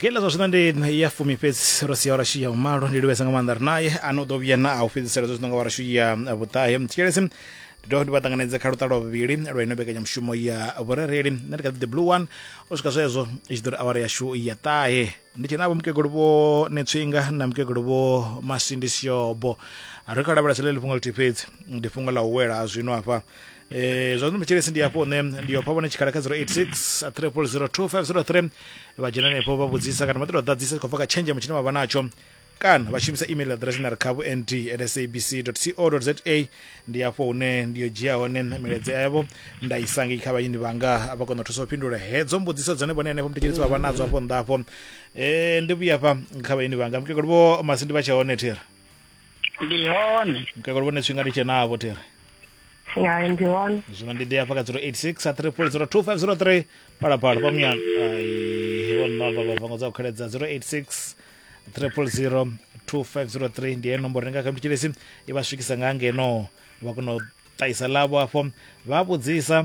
kila zwa zwino ndi ya fumi fhedzi ro sia orashu ya umalo ndi livhesa nga maanḓa ri naye ano ḓo vhuya na a u fhedzisela zwa zwino nga orashu ya vhuṱahe tshikelesi ndi dovha ndi vha ṱanganedze kha luṱa lwa vhuvhili lwa ino mbekanyamushumo ya vhurereli nṋe ndi kha ḓi the blue one u swika zwezwo i tshi ḓo ri awara yashu ya ṱahe ndi tshena vho mukegulu vho netswinga na mukegulu vho masindi siobo ri kha lavhelesa ḽe ḽi fhungo ḽithihi fhedzi ndi fhungo ḽa u wela ha zwino hafha Eh, zwa zwino mitshelesi ndi hafho hune ndi yo pha vhone tshikhala kha 086 3002503 vha dzhena henefho vha vhudzisa kana vha ṱoḓa u ḓadzisa khou bva kha tshenzhemo tshine vha vha natsho kana vha shumisa email address na ri kha vho nd at sabc co za ndi hafho hune ndi yo dzhia hone milaedza yavho nda i sangi kha vhayini vhanga vha kona u thusa u fhindula hedzo mbudziso dzone vhone henefho muthetshedzi vha vha nadzo hafho nnḓa hafho um ndi vhuya fha kha vhayini vhanga mukegulu vho masindi vha tshe hone thera ndi hone mukakalo vhone tshifhinga ndi tshenavho thiri ya ndi hone zwino ndi ḓi hafha kha 086 a 3002503 phalaphala pamuyano ai vhonova vhavango dza u kheledza 086 3002503 ndi yeyo nomboro renga kha mthetshelesi i vha swikisa nga ngeno vha kona u ṱahisa ḽavho afho vha vhudzisa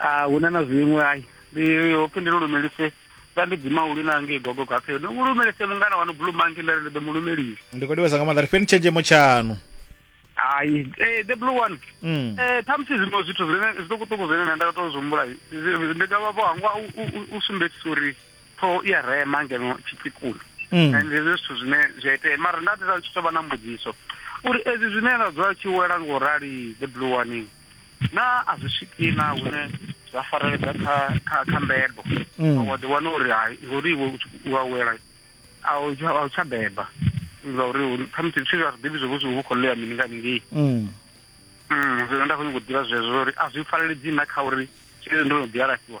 a hu na na zwiṅwe ai ndi hopfi ndi lulumelise vha ndi dzima ulu na ngei gogo gaphe ndi lulumelise mungana wanu blue monkey nda ri ndi ḓo mu lumelisa ndi khou livhasa nga maanḓa ri fheni tshenzhemo tshaṋu hai eh, the blue one Mm. eh ṱhamusi zwiṅwe zwithu zwine zwiṱukuṱuku zwine nṋe nda tou zwi humbula zi- ndi dovha vho hangwa u- u- u- u sumbedzisa uri ṱhoho i a rema ngeno tshitsikuni Mm. and hezwi zwithu zwine zwi a itea mara nda ndi sa tshi tou vha na mbudziso uri ezwi zwine ra dzula tshi wela ngo rali the blue one Naa a zwi swiki na hune zwa fareledza kha kha kha mbebo mm. wa ḓi wana uri hai ngori iwe u awela a u tsha beba nga uri khamusi zwithu zwa ḓivhi zwo vhusi vhu khou ḽea mini nga ningei mm. mm, zwino nda khou nyanga u ḓivha zwezwo uri a zwi fareledzi na kha uri zwezwi ndo no ḓi alafhiwa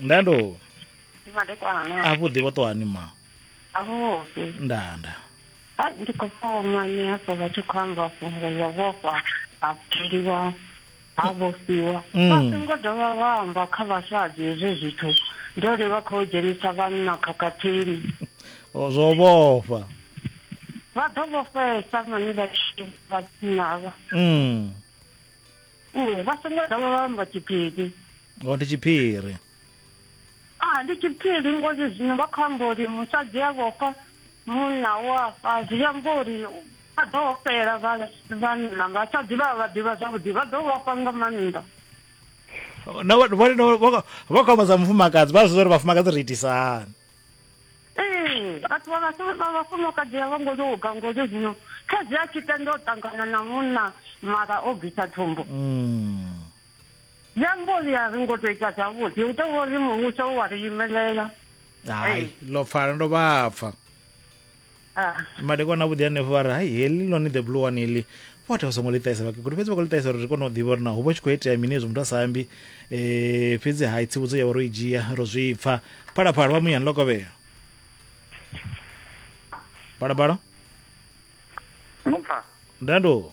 ndando a vhuḓi vho ṱohani ma a vhuḓi ndanda a ndi khou foma ni hafho vha tshi khou amba fhungo ya vhofha ha pfeliwa ha vhofhiwa mm. vha songo dovha vha amba kha vhasadzi hezwi zwithu ndo ri vha khou dzhenisa vhanna khakhathini zwo vhofha vha ḓo vhofhesa mani vha tshi vha tshinavha mm. u vha songo dovha vha amba tshiphiri o ndi tshiphiri a ndi tshiphiri ngori zwino vha khou amba uri musadzi a vhofha munna wa fa zwi amba uri vha ḓo ofhela vhanna vhasadzi vha vha ḓivha zwavhuḓi vha ḓo vhofha nga maanḓa vha khou amba dza mufumakadzi vha zwi uri vhafumakadzi ri itisahani ee vhathu vha vhafumakadzi a vho ngo tou ka ngori zwino khadzi a tshi tenda u ṱangana na munna mara o bvisa thumbu mm. zwi amba uri a ri ngo tou ita zwavhuḓi u tou vha uri muvhuso u wa ri imelela hai lo pfala ndo vha pfa Ah. madekwana avhuḓi hanefho vha ri hai heḽi lone the blue one heḽi vhathu vha songo ḽi ṱahisa vhakegulu fhedzi vha khou ḽi ṱahisa uri ri kone u ḓivha uri na hu vha tshi khou itea mini hezwi muthu a sa ambi um fhedzi hai tsivhudzo ya vha ro i dzhia ro zwi pfa phalaphala vha muyani ḽo kovhea phalaphala Mupfa. ndando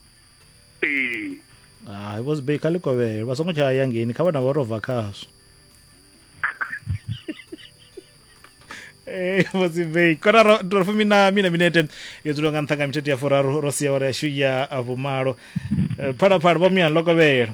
ee hai vho sibei kha ḽikovhele vha songo tsha ya ngeni kha vha na vha ro bva khazwo Eh, mozimbeyi kona ro ro fumi na mina minete yo dzula nga nṱha nga mithethe ya furaru ro sia ora yashu ya vhumalo Eh, phalaphala vho muyani ḽo kovhela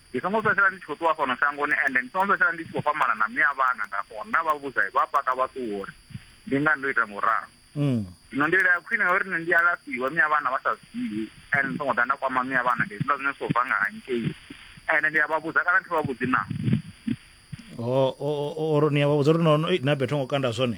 Ndi songo fhedzisela ndi tshi khou ṱuwa fhano shangoni, ende ndi songo fhedzisela ndi tshi khou fhambana na miya vhana. Nda ṱuwa nda vha vhudza, vha paka vha ṱuwa uri, Ndi ngani ndo ita nga u ralo? Zwino nḓila ya khwine ya uri nṋe ndi alafhiwe miya vhana vha sa zwi ḓivhi, ende ndi songo ḓa nda kwama miya vhana, ndi hezwiḽa zwine zwi khou bva nga hangei, ende ndi a vha vhudza kana thi vha vhudzi naa? Or ni a vha vhudza uri, No, no, ei, na Betty ho ngo kanda zwone.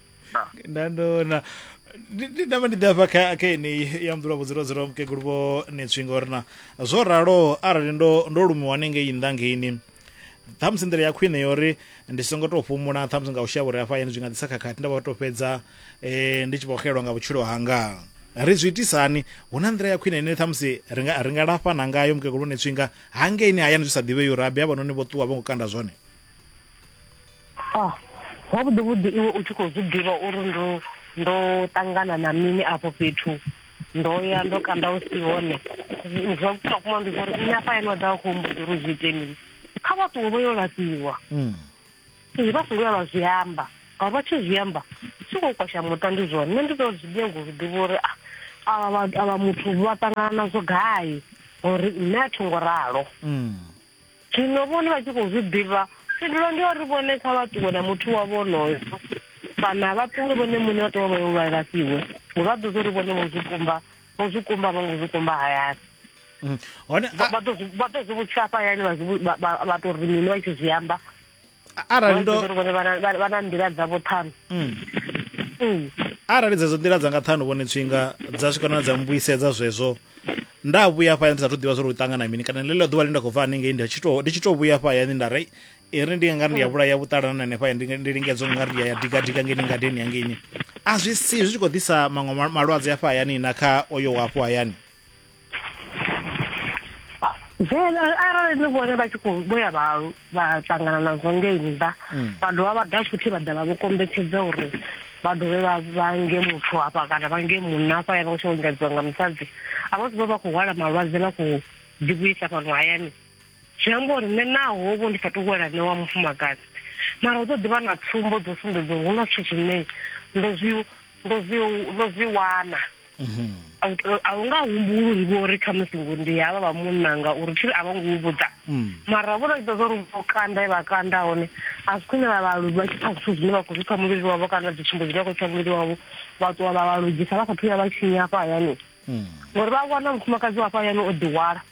nda ndona ndi ndi ndavha ndi ḓafha kha kha yeneyi ya mḓulwa vhudziro dziro mukegulu vho netswi ngori na zwo ralo arali ndo ndo lumiwa hanengei nnḓa ngeini ṱhamusi nḓila ya khwine yori ndi songo tou fhumula ṱhamusi nga u shavha uri hafha hayani zwi nga ḓisa khakhathi nda vha tou fhedza eh, ndi tshi vho xelwa nga vhutshilo hanga ri zwi itisani hu na nḓila ya khwine ine ṱhamusi ri nga ri nga lafhana ngayo mukegulu vho netswinga hangeini hayani zwi sa ḓivhei uri abe havhanoni vho ṱuwa vho ngo kanda zwone ah zwavhuḓi vhuḓi iwe u tshi khou zwi ḓivha uri ndo ndo ṱangana na mini afho fhethu ndo ya ndo kanda u si hone zwa vhukuma kuma ndi zwa uri nṋe afha yane wa ḓa vha khou mbuḓa uri zwi ite mini kha vha ṱuwe vho yo laṱiwa mm. izwi vha songo ya vha zwi amba ngauri vha tshi zwi amba tshi khou kwasha muṱa ndi zwone nṋe ndi ḓo zwi nyago zwi ḓivha uri ah, avha muthu vha ṱangana nazwo gai uri nṋe a tho ngo ralo mm. Zwino vhone vha tshi khou zwi ḓivha, phindulo ndi uri vhone kha vha ṱuwe na muthu wavho onoyo, kana vha ṱuwe vhone muṋe vha ṱuwa vha yo lwa lafhiwe, ngo vha ḓo zwo ri vhone vho zwi kumba vho zwi kumba vho ngo zwi kumba hayani mm. hone vha ḓo zwi vhudzisa hafha hayani vha tou ri mini vha tshi zwi amba arali ndo vhone vha na nḓila dzavho ṱhanu mm. Mm. arali dzedzo nḓila dzanga ṱhanu vhone tswinga dza swika na dza mbuisedza zwezwo nda vhuya hafha ndi sa thu ḓivha zwo ri u ṱangana mini kana ḽeḽo ḓuvha ḽi nda khou bva haningei ndi tshi tou ndi tshi tou vhuya hafha hayani nda ri i ri ndi ngari ndi ya vhulaya vhuṱalana na hanefha ndi lingedza u ngari ndi ya digadiga ngeni ngadeni yangeini a zwi si zwi tshi khou ḓisa maṅwe malwadze hafha hayani na kha oyo wa hafho hayani then arali ni vhone vha tshi khou vhoya vha vha ṱangana nazwo ngei nnḓa mm. vha dovha vha ḓa futhi vha ḓa vha vho kombetshedza uri vha dovhe vha vhange muthu hafha kana vhange munna hafha ya vha u tshi ongadziwa nga musadzi a vha zwi vha vha khou hwala malwadze na khou ḓivhuisa fhano hayani Zwi amba uri nṋe naho vho ndi sa tou wela nṋe wa mufumakadzi mara hu ḓo ḓi vha na tsumbo dzo sumbedza uri hu na zwithu zwine ndo zwi ndo zwi ndo zwi wana a hu nga humbuli uri vho ri khamusi ngo ndi havha vha munna nga uri thi a vho ngo vhudza mara vho ita zwa uri vho kanda e vha kanda hone a zwi khwine vha vha vha tshi pfa zwithu zwine vha khou zwi pfa muvhili wavho kana dzi tsumbo dzine vha khou pfa muvhili wavho vha ṱuwa vha vha lugisa vha kha thuya vha tshinya hafha hayani ngori vha wana mufumakadzi wa hafha hayani o ḓi hwala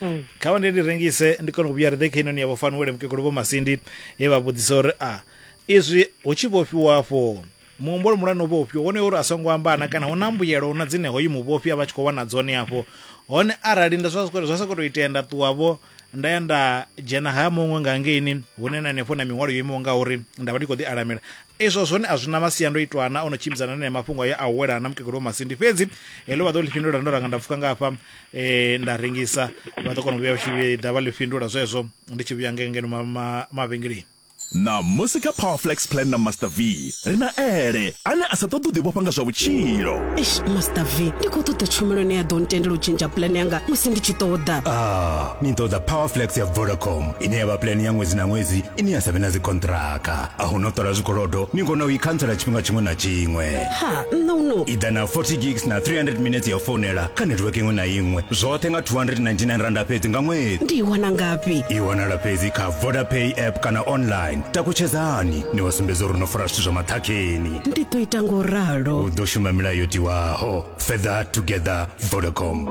mm. kha vha ndi ndi rengise ndi kone u vhuya ri ḓe kha inoni ya vhofanuwele mukegulu vho masindi he vha vhudzisa uri a izwi hu tshi vhofhiwa afho muhumbolo mulwane u vhofhiwa wone uri a songo ambana kana hu na mbuyelo na dzine hoyu muvhofhi a vha tshi khou wana dzone afho hone arali nda zwa sa khou tou itea nda ṱuwavho nda ya nda dzhena ha muṅwe nga ngeini hune na hanefho na miṅwalo yo imaho nga uri nda vha ndi khou ḓi alamela izwo zwone a zwi na masiandoitwa ana o no tshimbidzana na mafhungo ayo a u welana na mukegulu wa masindi fhedzi heḽo vha ḓo ḽi fhindula ndo ranga nda pfuka ngafha e, nda rengisa vha ḓo kona u vhuya tshi ḓa vha ḽi fhindula zwezwo ndi tshi vhuya ngengeno mavhengeleni na musi kha powerflex plan na master v ri na ele ane a sa ṱoḓi u ḓivhofha nga zwa vhutshilo eish master v ndi khou ṱoḓa tshumelo ine ya ḓo ntendela u tshintsha plan yanga musi ndi tshi ṱoḓa ah ni ṱoḓa powerflex ya vodacom ine ya vha plan ya ṅwedzi na ṅwedzi ine ya sa vhe na dzikontraka a hu no ṱola zwikolodo ni kona u i khantsela tshifhinga tshiṅwe na tshiṅwe ha nṋe uno i ḓa na 40 gigs na 300 minutes ya u founela kha network iṅwe na iṅwe zwoṱhe nga 299 randa fhedzi nga ṅwedzi ndi i wana ngafhi i wanala fhedzi kha vodapay app kana online takutshedzani ni wa sumbedza uri no fara zwithu zwa maṱhakheni ndi ḓo ita ngo ralo u ḓo shuma milayo yo tiwaho further together vodacom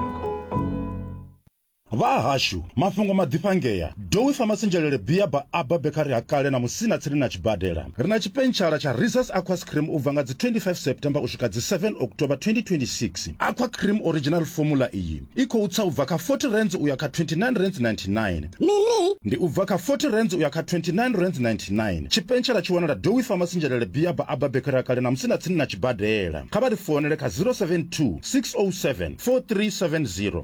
Vha hashu, mafhungo maḓifhangea. Dowi Pharmacy Njelele Bia ba Abba Bakery ha kale na Musina tsini na tshibadela. Ri na tshipentshela tsha Riza's Aquas Cream u bva nga dzi 25 September u swika dzi 7 October 2026. Aqua Cream Original Formula iyi i khou tsa u bva kha R40 u ya kha R29.99. Mini? Ndi u bva kha R40 u ya kha R29.99. Tshipentshela tshi wanala Dowi Pharmacy Njelele Bia ba Abba Bakery ha kale na Musina tsini na tshibadela. Kha vha ri founele kha 072 607 4370.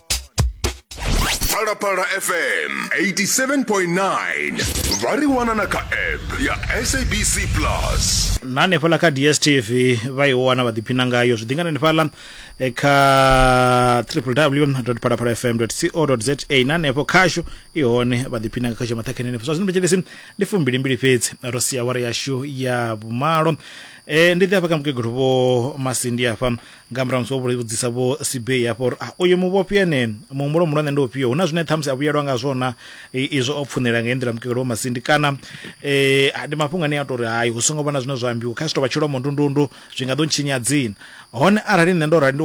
phalaphala fm 87.9 vha ri wana na kha app ya sabc plus na hanefhaḽa kha dstv vha i wana vha ḓiphina ngayo zwi ḓingana hanefhaḽa eh, kha www phalaphala fm co za na hanefho khashu i hone vha ḓiphina nga khashu maṱhakheni hanefho zwa zwino thetshelesi ndi fumbilimbili fhedzi ro sia wara yashu ya vhumalo Eh, ndi ḓi hafha kha mukegulu vho masindi hafha nga murahu musi o vhudzisa vho sibei hafho uri ah, uyu muvhofhi ene muhumbulo muhulwane ndi ufhio hu na zwine ṱhamusi a vhuyelwa nga zwona izwo o pfunela nga nḓila mukegelo wa masindi kana um ndi mafhungo ane a tou ri hai hu songo vha na zwine zwa ambiwa kha si tou vha tshilomo ndundundu zwi nga ḓo ntshinya dzina hone arali nṋe ndo rali ndi